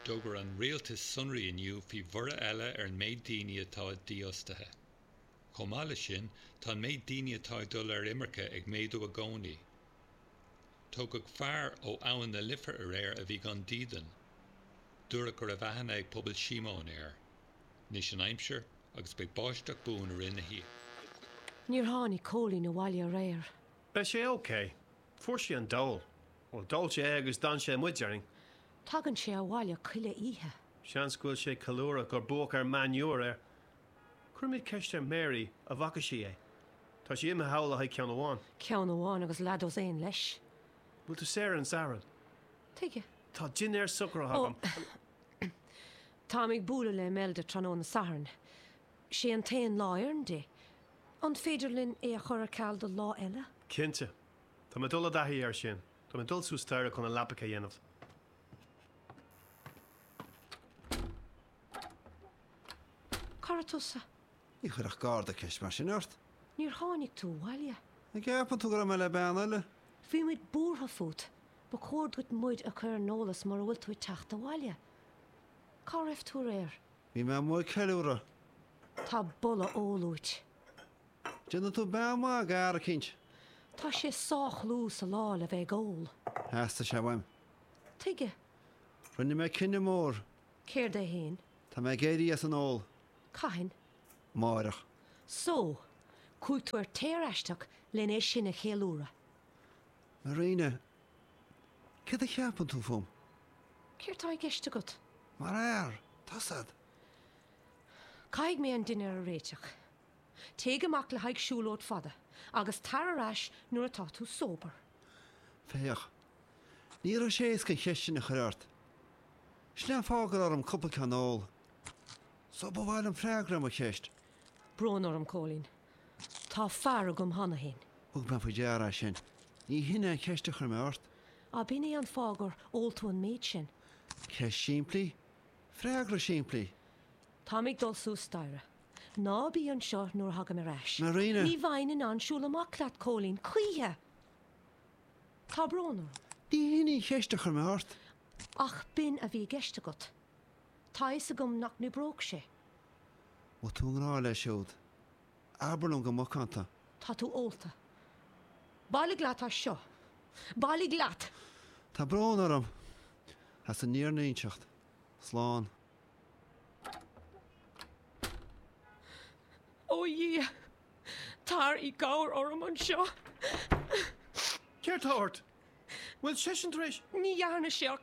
D'fhógair an rialtas sonraí inniu faoi bhorradh eile ar an méid daoine atá dífhostaithe. Chomh maith leis sin, tá an méid daoine atá ag dul ar imirce ag méadú i gcónaí. Tógadh fear ó Abhainn na Life aréir a bhí gan dídean. Dúradh go raibh aithne ag Pobal Shíomóin air. Anois an aimsir agus beidh báisteach buan i rith na hoíche. Níor tháinig Cóilín abhaile aréir. Beidh sé ok. Fuair sé an dole. Bhuel, d'ól sé é agus d'fhan sé amuigh, déarfainn. Tagann sé abhaile chuile oíche. Seans go bhfuil sé ag ceiliúradh gur buadh ar Man U aréir. Cuirfimid ceist ar Mary a' bhfaca sí é. Tá sí imithe thall le haghaidh ceann amháin. Ceann amháin agus leathdhosaen leis. Bhfuil tú saor ar an Satharn? Tuige? Tá dinnéar socraithe agam. Ó, táim ag bualadh le Imelda tráthnóna Sathairn. sé an t-aon lá a oireann di. An féidir linn é a chur ar ceal do lá eile? Cinnte. Tá mé ag dul i dtaithí air sin. Tá mé ag dul suas staighre chun na leapacha a dhéanamh. Cá raibh tusa? Ní chuirfeadh Garda ceist mar sin ort. Níor tháinig tú abhaile. An gceapann tú go raibh mé le bean eile? Bhí muid buartha fút. Ba chóir duit muid a chur ar an eolas mura bhfuil tú ag teacht abhaile. Cá raibh tú aréir? Bhí mé amuigh ag ceiliúradh. Tá boladh óil uait. Déanfaidh tú bean maith d'fhear eicínt. Tá sé sách luath sa lá le bheith ag ól. Theastaigh sé uaim. Tuige? Rinne mé cinneadh mór. Céard é fhéin? Tá mé ag éirí as an ól. Cathain? Amáireach. So! Chuaigh tú ar tear aisteach len é sin a cheiliúradh. Marina, Céard a cheapann tú fúm? Céard tá i gceist agat? Mar fhear, tá a fhios agat. Caithfidh mé an dinnéar a réiteach. Téigh amach le haghaidh siúlóid fada agus tar ar ais nuair atá tú sober. Féach, ní raibh sé éasca an cheist sin a chur ort. Sin é an fáth go raibh orm cúpla ceann a ól. So ba mhaith liom freagra ar mo cheist. Brón orm, Cóilín. Tá fear agam cheana féin. Thug mé faoi deara é sin. Ní shin é an cheist a chuir mé ort. Ab in é an fáth gur ól tú an méid sin? Ceist simplí, freagra simplí. Táim ag dul suas staighre. Ná bí anseo nuair a thagaim ar ais. Marina! Ní bheinn in ann siúl amach leat, Cóilín, choíche! Tá brón orm. Ní shin í an cheist a chuir mé ort. Ach b'in a bhí i gceist agat. Tá a fhios agam nach n-oibreodh sé. Má tá tú i ngrá leis siúd, abair liom go macánta. Tá tú ólta. Bailigh leat as seo. Bailigh leat! Tá brón orm as an mímhúinteacht. Slán. Ó a Dhia, tar i gcabhair orm anseo. Céard tá ort? Bhfuil seisean tar éis. Ní dhearna sé ach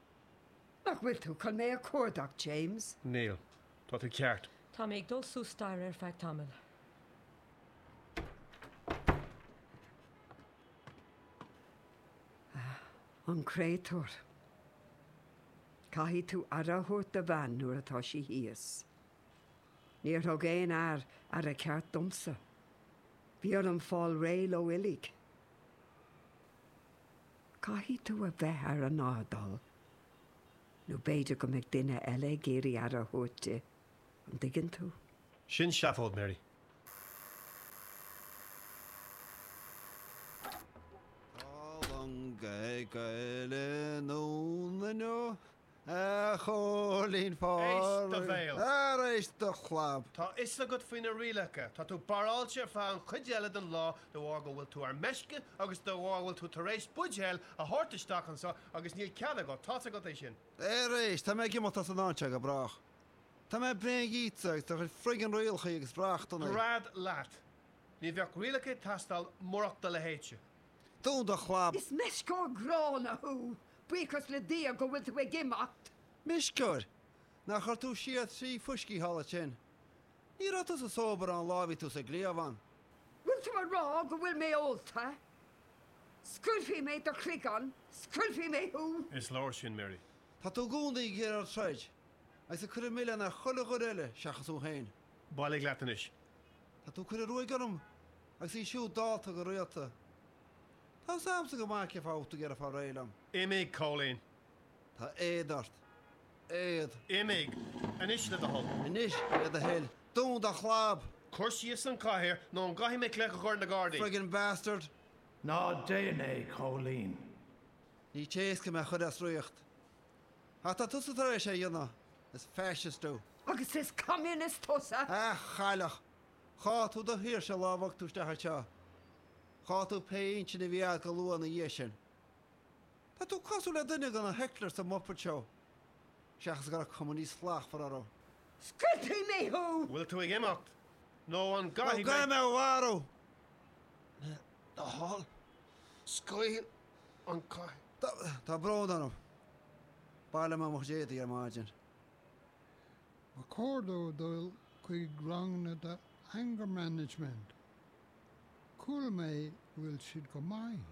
Nach bhfuil tú chun mé a chuardach, James? Níl. Tá tú ceart. Tá mé ag dul suas staighre ar feadh tamaill. Ah, an créatúr. Caithfidh tú aire a thabhairt do bhean nuair atá sí thíos. Níor thug aon fhear aire ceart domsa. Bhí orm fáil réidh leo uilig. Caithfidh tú a bheith ar an airdeall, nó b'fhéidir go mbeidh duine eile ag iarraidh aire a thabhairt di, an dtuigeann tú? Sin seafóid, Mary. A Chóilín Phádraig. Éist do bhéal. Ara éist do chlab. Tá a fhios agat faoi na rialacha. Tá tú barráilte ar feadh an chuid eile den lá de bharr go bhfuil tú ar meisce agus de bharr go bhfuil tú tar éis buidéal a thabhairt isteach anseo agus níl cead agat, tá's agat é sin. Ara éist, tá mé ag imeacht as an áit seo go brách. Tá mé bréan dhíotsa agus do chuid friggin' rialacha agus reachtanna. Gread leat. Ní bheadh rialacha ag teastáil murach do leithéide. Dún do chlab! Is meisceoir gránna thú, buíochas le Dia go bhfuil tú ag imeacht! Meisceoir? Nár chuir tú siar trí fuiscí thall ansin? Ní raibh tú sóbráilte ón lá a bhí tú sa gcliabhán. Bhfuil tú ag rá go bhfuil mé ólta? Scaoilfidh mé do chloigeann, scoiltfidh mé thú! Is leor sin, Mary. Tá tú i gcónaí ag iarraidh troid, agus ag cur an milleán ar chuile dhuine eile seachas thú féin. Bailigh leat anois. Tá tú ag cur an ruaig orm agus í siúd dallta go rialta. Tá 'fhios a'msa go maith cé fáth a bhfuil tú ag iarraidh fáil réidh liom. Imigh, Cóilín. Tá éad ort. Éad. Imigh. Anois le do thoil. Anois le do thoil. Dún do chlab! Cuir síos an chathaoir nó an gcaithfidh mé glaoch a chur ar na gardaí? Friggin bastard. Ná déan é, Cóilín. Ní éasca mé a chuir as riocht. Ach tá tusa tar éis é a dhéanamh, is Fascist tú. Agus is Communist tusa! A chailleach! Chaill tú do shaoirse an lá a bhog tú isteach anseo. Chaill tú pé intinn a bhí agat go luath ina dhiaidh sin. Tá tú cosúil le duine de na hecklers sa Muppet Show, seachas go raibh cuma níos slachtmhaire orthu. Scoiltfidh mé thú! Bhfuil tú ag imeacht? Nó an gcaithfidh mé thú a mharú? Thall, scaoil an cath. Tá brón orm. Baileoidh mé mo chuid éadaí ar maidin. Ba chóir dó dul chuig ranganna do anger management. Chuala mé go bhfuil siad go maith.